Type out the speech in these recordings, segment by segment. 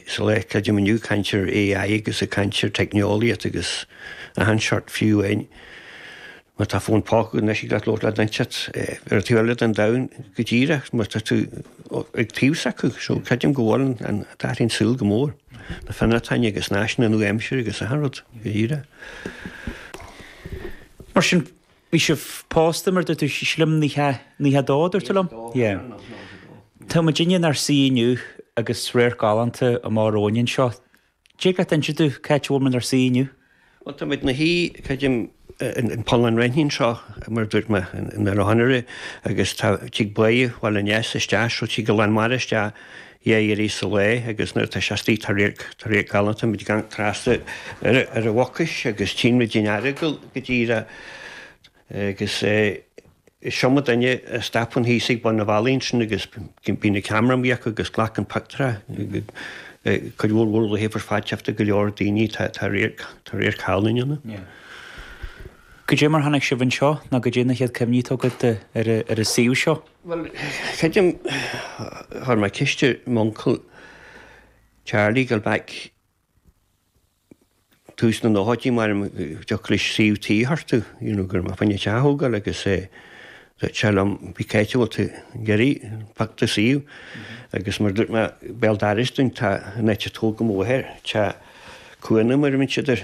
sa lá creidim inniu, caint ar AI agus ag caint ar teicneolaíocht agus achan seort fiú amháin má tá fón póca agat anois ag labhairt le duine inteacht ar an taobh eile den domhan go díreach mar tá tú ag taobh s'acu so creidim go bhfuil d'athraigh an saol go mór, na fir atá inniu agus na háiseanna nua-aimsire agus achan rud go díreach. Mar sin. Bhí sibh pósta, mar a dúirt tú, sílim, naocha, naocha dó, a dúirt tú liom? Yeah. Tá muid inniu inár suí inniu agus radharc galánta amach romhainn anseo. Dtig leat inse domh cá háit a bhfuil muid inár suí inniu? Bhuel, tá muid ina shuí, creidim, in Poll an Raithnín seo, mar a dúirt mé, in Oileán Thoraigh, agus tá tig Bá Bhaile an Easa, isteach, so tig an lán mara isteach, Dhá uair sa lá agus nuair atá sé istigh tá radharc galánta muid ag amharc trasna ar an Mhucais agus tchíonn muid an Earagail go díreach agus is iomdha duine a stopann thíos ag bun an bhealaigh ansin agus bíonn an ceamara amuigh acu agus glacann pioctúirí, cuid mhór mhór le hAifreann Fáilteachta go leor daoine, tá radharc galánta ann. Goidé mar tháinig sibh anseo nó goidé na chéad cuimhní atá agat ar an suíomh seo? Bhuel, creidim chuir mé ceist ar m'uncail Charlie ag gabháil back tús na nóchaidí an dtiocfadh leis suíomh tí a thabhairt domh, you know, go raibh mé fá choinne teach a thógáil agus eh dúirt sé liom, bhuel cá háit a bhfuil tú ag iarraidh pioc do shuíomh? Agus mar dúirt mé Béal Feirste, tá an eite chlog amuigh thoir, teach cuanna mar a bhíonn siad air,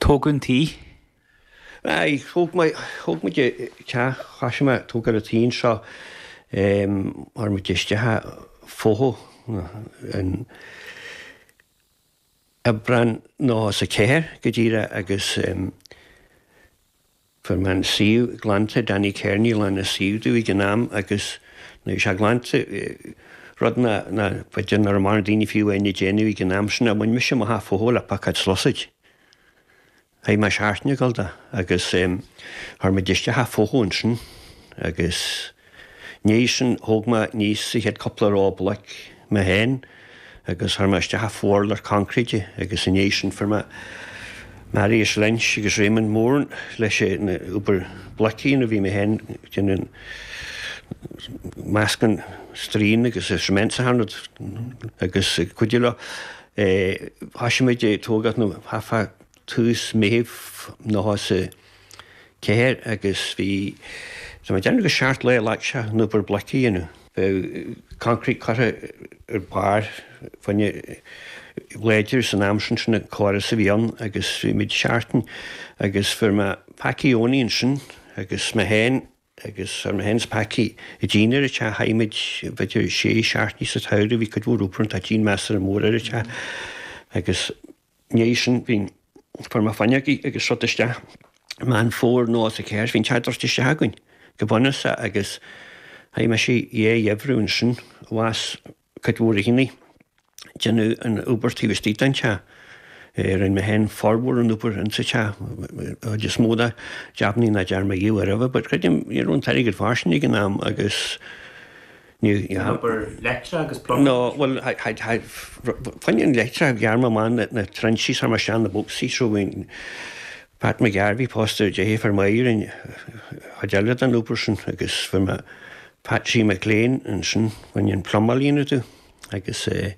Tógáil an tí. Aye, thóg mé, thóg muid an teach, thoisigh mé ag tógáil an tí anseo, em, chuir muid isteach an futhú, in Aibreán, nócha ceathair, go díreach, agus, em, Fuair mé an suíomh glanta, Danny Kerney a ghlan an suíomh domh ag an am agus nuair a bhí sé glanta, rud b'fhéidir nach raibh mórán daoine fiú amháin ag déanamh ag an am sin, bhain mise amach an futhú le piocóid is sluasaid. Chaith mé seachtain ag gabháil de agus chuir muid isteach an futhú ansin agus. I ndiaidh sin, thóg mé aníos an chéad cúpla ró bloic mé féin agus chuir mé isteach an t-urlár concrete agus i ndiaidh sin fuair mé Maurice Lynch agus Raymond Moran leis an obair bloic a dhéanamh, bhí mé féin ag déanamh meascán stroighin agus an cement a tharraingt agus ag cuidiú leo. Thosaigh muid ag tógáil nó half a tús Mheithimh nócha is a ceathair agus bhí, tá mé ag déanamh gur seacht lá a ghlac sé an obair bloic a dhéanamh. Bheadh concrete curtha ar barr faoina ghlaidir san am sin, sin an córas a bhí ann agus bhí muid seachtain agus fuair mé Packie Owney ansin agus mé féin agus chuir mé féin is Packie an díon ar an teach, chaith muid b'fhéidir sé seachtainí sa tsamhradh, bhí cuid mhór obair ann, tá díon measartha mór ar an teach agus. ndiaidh sin, bhí fuair mé fuinneogaí agus rud isteach Meán Fómhair nócha is a ceathair, bhí an teach druidte isteach againn go bunúsach agus chaith mise dhá gheimhreadh ansin, ar nós cuid mhór daoine, déanamh an obair taobh istigh den teach. Rinne mé féin formhór an obair insa teach, chuid is mó de, jabannaí nach dtearn mé ariamh but creidim ní raibh an t-airgead fairsing ag an am agus, Níl obair leictrithe agus plumbing No, bhuel, fá choinne an leictreachas ghearr mé amach na na trinsí 's chuir mé suas na bocsaí seo againn. Pat McGarvey pósta ar deirfiúr liom a rinne an chuid eile den obair sin agus fuair mé Patsy McLean ansin, fá choinne an plumáil a dhéanamh agus eh,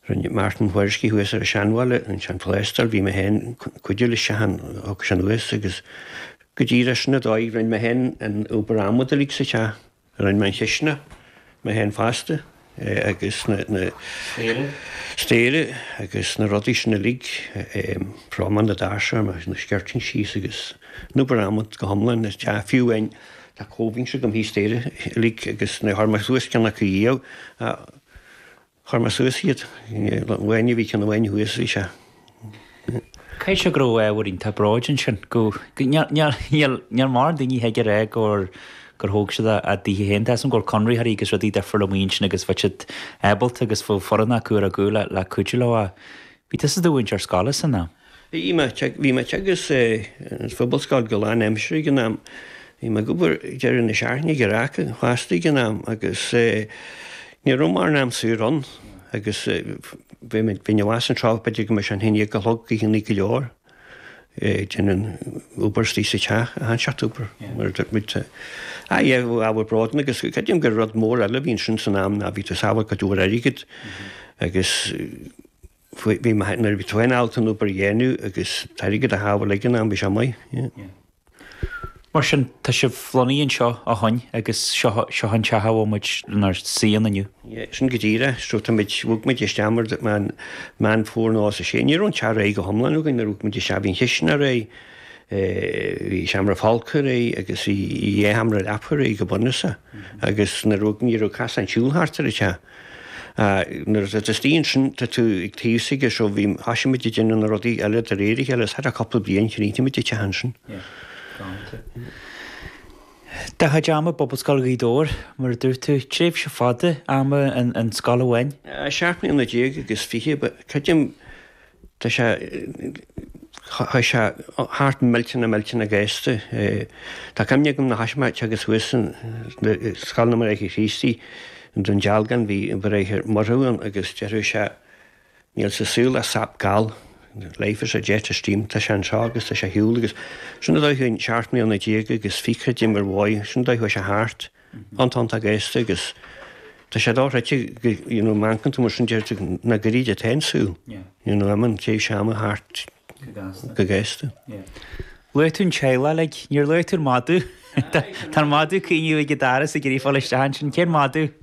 rinne Martin Whoriskey thuas ar an Seanbhaile, an sean phlástar, bhí mé féin ag cuidiú leis a shon thug sin thuas agus go díreach sin an dóigh, rinne mé féin an obair adhmad uilig sa teach. Rinne mé an chistineach mé féin fosta agus na staighre agus na rudaí sin uilig, fráma na ndoirse 's chuir mé na skirting síos agus an obair adhmaid go hiomlán ar an teach fiú amháin. Tá covings agam thíos staighre uilig agus níor chuir mé suas ceann acu riamh. Chuir mé suas iad. Nuair a bhí cionn amháin thuas bhí sé. Caithfidh sé go raibh ábhar iontach bróid ansin, go, níl mórán daoine a thig a rá gur, gur thóg siad a, a dtithe féin. Tá 'fhios a'm go raibh conraitheoirí agus rudaí difriúla amuigh ansin agus bhí siad ábalta agus bhí foireann acu ar a gcúl le, le cuidiú leo ach bhí tusa i do mhúinteoir scoile san am. Bhí, bhí mé ag teagasc sa Phobalscoil go lán aimsire ag an am. Bhí mé ag obair ag deireadh na seachtaine ag Earrach fosta ag an am agus eh, ní raibh mórán am saor ann agus eh, bhí mé, bhí mé amach san trá b'fhéidir go mbeadh sé an haon déag a chlog, oícheannaí go leor eh, ag déanamh an obair istigh sa teach, a sheanteach obair mar a dúirt muid. Ah yeah, bhí ábhar bróid ann agus creidim gur rud mór eile a bhí ansin san am ná bhí tú ag sábháil cuid mhór airgead agus eh, Bhí mé, nuair a bhí tú féin ábalta an obair a dhéanamh agus an t-airgead a shábháil ag an am, bhí sé maith, yeah. Mar sin, tá sibh lonnaithe anseo ó shoin agus seo, seo an teach a bhfuil muid inár suí ann inniu? Yeah, sin go díreach, so tá muid, bhog muid isteach mar a dúirt mé Meán Fómhair nócha is a sé, ní raibh an teach réidh go hiomlán againn nuair a bhog muid isteach, bhí an chistineach réidh, bhí seomra folctha réidh agus bhí dhá sheomra leapa réidh go bunúsach agus nuair a bhog, ní raibh casáin siúil thart ar an teach. Nuair a d'fhill tú ansin, tá tú ag taobh s'aige seo, bhí, thosaigh muid ag déanamh na rudaí eile de réir a chéile, is thar cúpla bliain chríochnaigh muid an teach ansin. Do chuid ama i bPobalscoil Ghaoth Dobhair, mar a dúirt tú, tréimhse fhada ama in scoil amháin. Seacht mbliana déag agus fiche, bhuel, creidim, Tá sé, chuaigh sé thart millteanach millteanach gasta. Tá cuimhne agam an chaismirt agus thuas in Scoil na mBráithre Críostaí i nDún Dealgan bhí an Bráthair Murchú ann agus deireadh sé Níl sa saol ach scaob gail, life is a jet of steam, tá sé anseo agus tá sé ar shiúl agus sin an dóigh a chuaigh seacht mbliana déag agus fiche, d'imigh, bhuel, sin an dóigh a chuaigh sé thart. an t-am, tá sé gasta agus tá sé dochreidte go, you know, mothaíonn tú mar sin deir tú chomh gairid is atá an saol, you know, mar a théann an t-am thart go gasta. Luaigh tú an tseilg uilig, níor luaigh tú an madadh. Tá an madadh ag caoineadh ag an doras ag iarraidh fáil isteach ansin, cén madadh?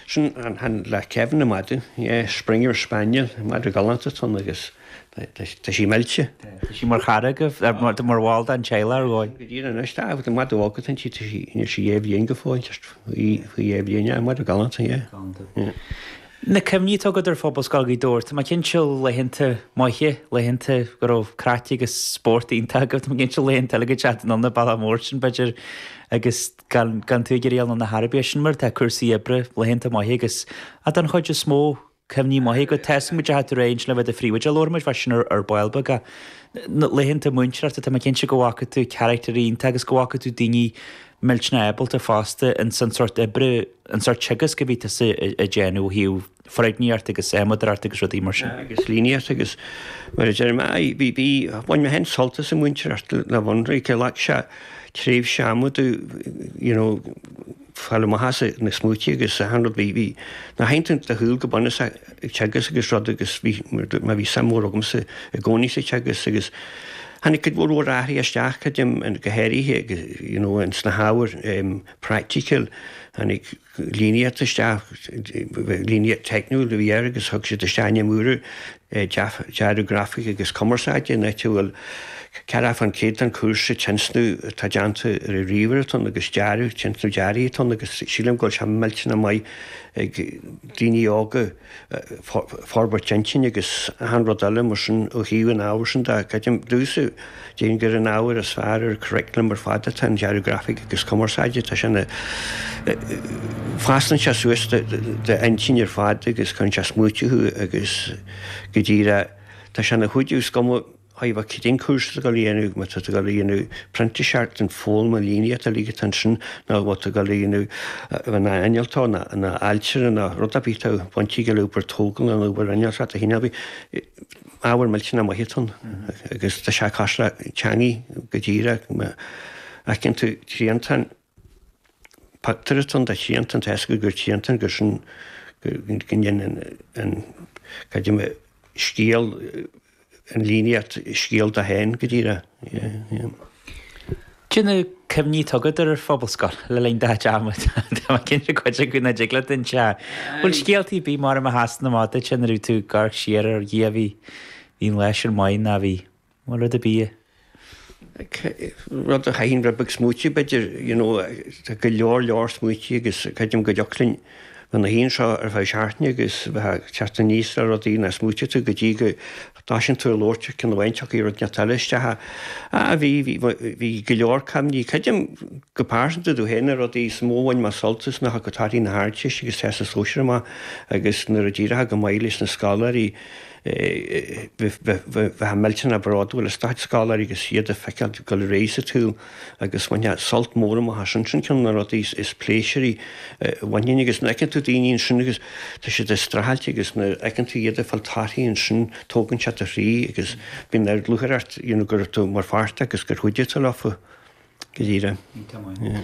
Sin an le Kevin, an madadh, yeah, Springer Spaniel, madadh galánta atá ann agus. Tá sí millte. Tá siad mar chara agaibh, mar bhall den teaghlach ar dhóigh. Go dian anois, tá, tá madadh óg atá inti, tá sí, níl sí dhá bhliain go fóill, just faoi, faoi dhá bhliain, yeah, madadh galánta, yeah. Galánta. Yeah. Na cuimhní atá agat ar Phobalscoil Ghaoth Dobhair, tá mé cinnte laethanta maithe, laethanta go raibh craic agus spórt iontach agaibh, tá mé cinnte laethanta eile ag dul chun an bhealaigh mór sin b'fhéidir agus gan, gan tú ag iarraidh dul chun na hoibre, sin mar atá cúrsaí oibre, laethanta maithe agus, ah, don chuid is mó, Cuimhní maithe go dtosóidh muid, bhí tú tréimhse le bheith i do phríomhoide, labharfaidh muid faoi sin ar ball beag. Na laethanta múinteoireachta, tá mé cinnte go bhfaca tú carachtair iontacha agus go bhfaca tú daoine millteanach ábalta fosta ins an sórt oibre, an sórt teagaisc a bhí tusa ag déanamh ó thaobh foirgníocht agus adhmadóireacht agus rudaí mar sin. agus líníocht agus mar a deir mé, aye, bhí, bhí, bhain mé féin sult as an mhúinteoireacht le bheith ionraic leat, sa tréimhse ama udaí, you know, Fáil amach as na smaointí agus achan rud, bhí na haidhmeanna le ghabháil go bunúsach ag teagasc agus rud agus bhí, mar bhí suim mhór agamsa i gcónaí sa teagasc agus tháinig cuid mhór mhór athruithe isteach, creidim, go háirithe you know in sna hábhair praiticiúla, tháinig líníocht isteach, líníocht theicniúil a bhí air agus thug siad isteach ainm úr Dearadh Grafaice agus Cumarsáide in áit a bhfuil 40 fán 100 den chúrsa, tionscnamh atá déanta ar ríomhaire atá ann agus dearadh, tionscnamh dearaidh atá ann agus sílim go bhfuil sé millteanach maith ag daoine óga forbairt intinne agus achan rud eile mar sin ó thaobh an ábhair sin de. Creidim, duitse! Déan gur an ábhar is fearr ar curriculum ar fad atá in Dearadh Grafaice agus Cumarsáide, tá sé ina. fosclann sé suas d'intinn ar fad agus cuireann sé ag smaoitiú thú agus go dtí le tá sé ina chuidiú is cuma cé acu cén cúrsa atá tú ag gabháil a dhéanamh, má tá tú ag gabháil a dhéanamh printíseacht in foghlama líníochta uilig atá ansin nó má tá tú ag gabháil a bheith ina innealtóir ná ina ailtire ná rud ar bith atá baint aige le obair tógála nó obair innealtóireachta a shíneadh Ábhar millteanach maith atá ann agus tá sé cosúil le teangaidh go díreach. Má fheiceann tú triantán, pictiúr atá ann de thriantán, tá a fhios agat gur triantán gur sin, go ndéanann an, cad é, scéal, an líníocht scéal dó féin go díreach. Cad é na cuimhní atá agat ar Phobalscoil le linn do théarma. Tá mé cinnte cuid acu nach dtig leat inse ach an bhfuil scéalta ar bith mar a mó a sheasann amach duit nuair atá tú ag amharc siar, a Dhia bhí an lá sin maith nó an bhfuil rud ar bith a rud a chaithfinn rud beag smaoitiú b'fhéidir you know tá go leor leor smaointe agus creidim go dtiocfadh linn gabháil ar aghaidh anseo ar feadh seachtaine agus bheith ag teacht aníos le rudaí nach smaoitíonn tú go dtí go dtosaíonn tú ag labhairt ar cheann amháin tiocfaidh rud neart eile isteach. Ah bhí, bhí, bhí go leor cuimhní. Creidim go pearsanta domh féin na rudaí is mó a bhain mé sult as ná nuair a thiocfadh torthaí na hArdteiste agus Teastas Sóisir amach agus nuair a d'éireochadh go maith leis na scoláirí bheifeá millteanach bródúil as do chuid scoláirí agus iad a fheiceáil ag gabháil ar aghaidh sa tsaol agus bhain mé sult mór amach as sin. Sin ceann de na rudaí is pléisiúraí a bhainfinn agus nuair a fheiceann tú daoine ansin agus tá siad ag streachailt agus nuair a fheiceann tú iad ag fáil torthaí ansin tógann sé do chroí agus bíonn ardlúcháir ort you know go raibh tú mar pháirt agus gur chuidigh tú leofa. Go díreach. Yeah.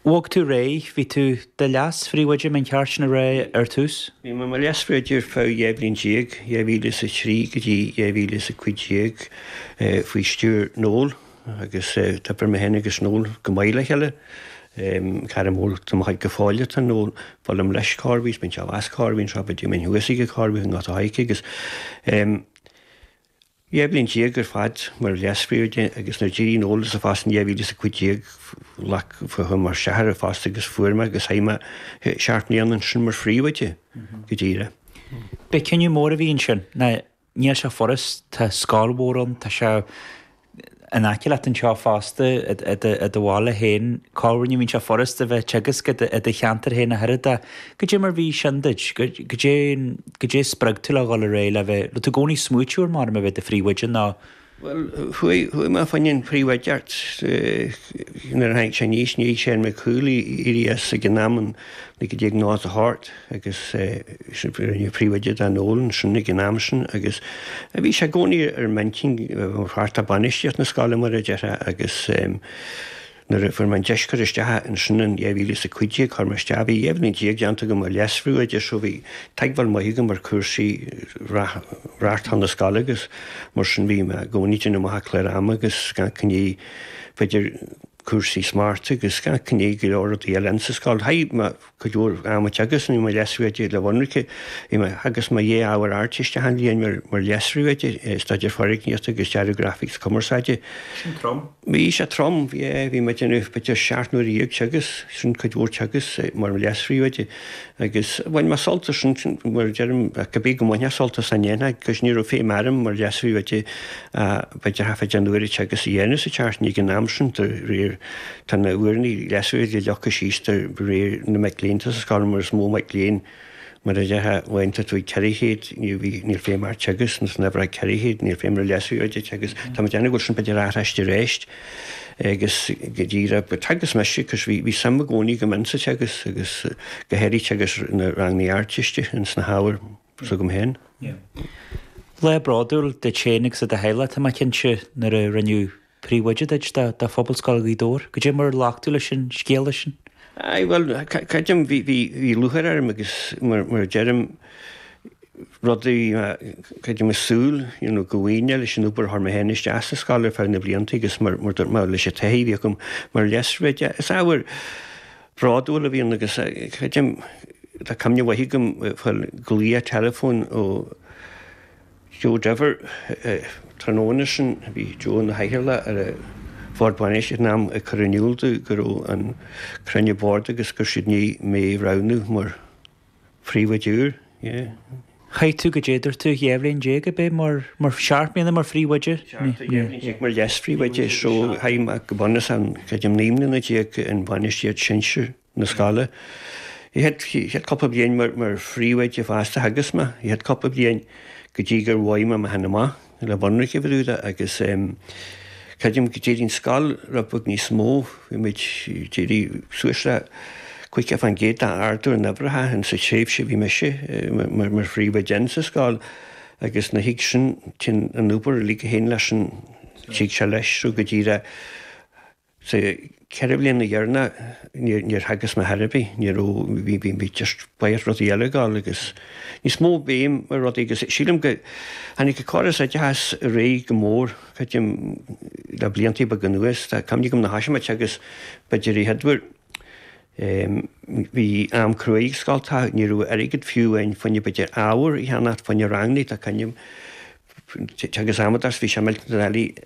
Bhog tú ar aghaidh, bhí tú i do leas-phríomhoide ba cheart sin a rá ar tús? Bhí mé i mo leas-phríomhoide ar feadh dhá bhliain déag, 2003 go dtí 2015, faoi stiúir Noel agus d'obair mé féin agus Noel go maith le chéile. Cara mór de mo chuid go fóill atá Noel, buailim leis cá bhfios, bíonn sé a mheas cá bhfios, bhíonn sé á bhuidéal min thuas aige cá bhfios an áit atá a aghaidh aici agus. Dhá bhliain déag ar fad mar leas-phríomhoide, agus nuair a d'éirigh Noel as an phost in 2015 like chuir mé isteach ar an phost agus fuair mé é agus chaith mé seacht mbliana ansin mar phríomhoide go díreach. B'é cinneadh mór a bhí ansin, nó níl sé furast, tá scoil mhór ann, tá sé. In aice leat anseo fosta, i do bhaile féin, corruair ní bhíonn sé furast a bheith ag teagasc i do cheantar féin, ach an oiread, cad é mar a bhí sin duit, cad é, cad é a spreag tú le dhul ar aghaidh le bheith, an raibh tú i gcónaí ag smaoitiú maidir le bheith i do phríomhoide nó, Bhuel, chuaigh mé fá choinne an phríomhoideacht nuair a tháinig sé aníos, níl sé ar mo chúl ag éirí as ag an am, in 1990 thart. agus rinneadh príomhoide de Noel ansin ag an am sin agus bhí sé i gcónaí ar m'intinn mar pháirt de bhainistíocht na scoile, mar a déarfá, agus nuair a fuair mé an deis cur isteach ansin in 2015, chuir mé isteach, bhí dhá bhliain déag déanta agam mar leasphríomhoide so bhí teagmháil maith agam ar chúrsaí reáchtáil na scoile agus mar sin bhí mé i gcónaí ag déanamh amach clár ama agus ag amharc i ndiaidh, b'fhéidir, cúrsaí smachta agus ag amharc i ndiaidh go leor rudaí eile sa scoil. Chaith mé cuid mhór ama ag teagasc i mo leasphríomhoide le bheith ionraic, bhí mé ag teagasc mo dhá ábhar Ardteiste achan bhliain mar mar leasphríomhoide, Staidéar Foirgníochta agus Dearadh Grafaic is Cumarsáide. Sin trom. Bhí sé trom, yeah, bhí mé ag déanamh b'fhéidir seacht n-uaire déag teagasc, sin cuid mhór teagasc mar leasphríomhoide. Agus bhain mé sult as sin, mar a deirim, ach ab é go mbainfeá sult as, ní dhéanfá, cos ní raibh feidhm orm mar leasphríomhoide bheith ag feidearthacht fé aon uair agus a dhéanamh sa tseachtain ag an am sin de réir tá na uaireannaí leasphríomhoide leagtha síos de réir na mic léinn atá sa scoil mar is mó mic léinn mar a déarfá nuair atá tú ag ceithre chéad ní bhí níl feidhm ort agus nuair nach raibh ceithre chéad níl feidhm ar leasphríomhoide bheith ag teagasc tá mé ag déanamh go bhfuil sin b'fhéidir athraithe aríst. Agus go díreach theagasc mise, agus bhí suim i gcónaí agam in sa teagasc agus go háirithe teagasc na ranganna Ardteiste in sna hábhair s'agam féin. Lá bródúil duit féin agus do do theaghlach, tá mé cinnte, nuair a rinneadh príomhoide díot de Phobalscoil Ghaoth Dobhair. Goidé mar a ghlac tú leis an scéala sin? Aye, bhuel, creidim, bhí lúcháir orm agus mar a deirim, rud, creidim, mé ag súil you know go bhfaighinn é leis an obair a chuir mé féin isteach sa scoil ar feadh na blianta agus mar mar dúirt mé leis an taithí a bhí agam mar leasphríomhoide, is ábhar bródúil a bhí ann agus creidim tá cuimhne mhaith agam faoin ghlaoch teileafóin ó Joe Diver tráthnóna sin, bhí Joe ina chathaoirleach ar an Bhord Bainistíochta ag an am, ag cur in iúl dom go raibh an cruinniú boird agus go raibh siad i ndiaidh mé a roghnú mar. phríomhoide, yeah. Chaith tú goidé, dúirt tú dhá bhliain déag arb ea mar, mar seacht mbliana mar phríomhoide? Seacht, yeah, dhá bhliain déag mar leas-phríomhoide so chaith mé go bunúsach, creidim naoi mbliana déag in bainistíocht sinsir na scoile. An chéad, an chéad chúpla bliain mar phríomhoide fosta, theagasc mé, an chéad chúpla bliain go dtí gur bhog mé mé fhéin amach. le bheith ionraic fá dtaobh de agus creidim go d'éirigh an scoil rud beag níos mó, bhí muid ag iarraidh suas le 50 fán gcéad d'ardú in uimhreacha, sa tréimhse bhí mise mar phríomhoide insa scoil agus nuair a thig sin, téann an obair uilig a théann leis sin, tig sé leis, so go díreach. Sa cheithre bhliana dheireanach níor theagasc mé ar chor ar bith, ní raibh, bhí barraíocht rudaí eile ag dul agus níos mó béim ar rudaí agus sílim go, tháinig an córas oideachais ar aghaidh go mór, creidim, le blianta beaga anuas, tá cuimhne agam nuair a thoisigh mé ag teagasc b'fhéidir an chéad uair, em, bhí am cruaidh ag scoltacha, ní raibh airgead fiú amháin fá choinne b'fhéidir ábhar a cheannacht, fá choinne rangannaí, tá cuimhne agam ag teagasc mata agus, bhí sé millteanach doiligh,